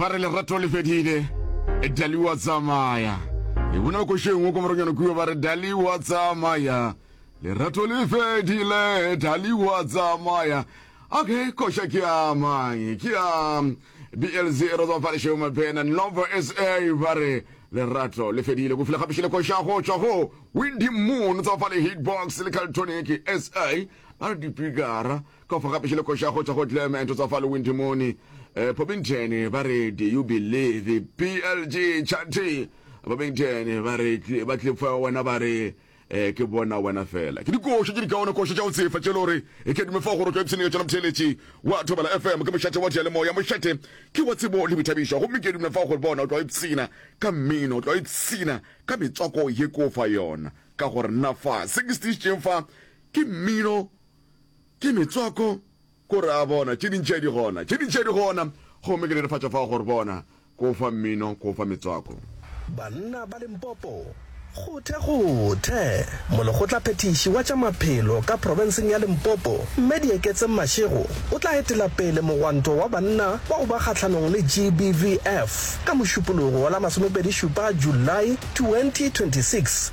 ba re lerato le fedile dali wa tsamaya e bona ba košengwe ko moronyana kuo ba re dali wa tsamaya lerato le fedile dali wa tsamaya okay koša ke a mang ke a blz e rotswa fa lešeo mapena novo sa ba re lerato le fedile go file gape šele koša go tšwa go windy moon tsa fa le hitbox le caltonic sa ba re dipikara Ka fo gape šele košago tša go Glam and tsa fa Lewindimoni, Pobington ba re Do you believe PLG Chanty? Pobington ba re ba Clifford wena ba re ke bona wena fela. Ke dikoša tše dikaone koša tša go tsefa tše le gore e ke dume fa go rotwa epsene ka tšona motheeletši wa Thobela FM ke mošate wa diyalemoya. Mošate ke wa tsebo le boithabišo gomme ke dume fa gore bona o tlo ipshina ka mmino, o tlo ipshina ka metswako ye ke o fa yona ka gore na fa se ke se tiišitšeng fa ke mmino Ke metswako, ko re a bona, tše dintši di gona, tše dintši di gona, gomme ke netefatša fao gore bona, ko o fa mmino, ko o fa metswako. Banna ba Limpopo, Kgothe, kgothe! Molekgotlaphethiši wa tša Maphelo ka profenseng ya Limpopo, Mme Dieketseng Mashego, o tla etela pele mogwanto wa banna wa go ba kgahlanong le GBVF ka Mošupologo la masomepedi šupa, July 2026,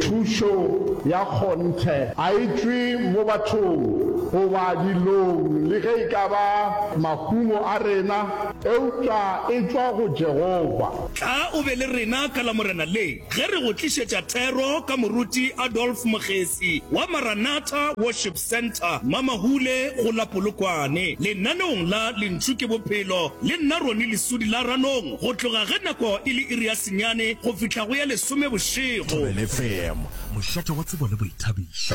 Thušo ya kgonthe ga e tšwe mo bathong goba dilong le ge e ka ba mahumo a rena, eupša e tšwa go Jehofa. Tla o be le rena ka Lamorena le, ge re go tlišetša thero ka Moruti Adolf Mogesi wa Maranatha Worship Centre, Mamahule go la Polokwane, lenaneong la Lentšu ke Bophelo, le nna Ronnie Lesudi la Ranong go tloga ge nako e le iri ya senyane go fihla go ya lesome bošego. Thobelefm, mošate wa tsebo le boithabišo.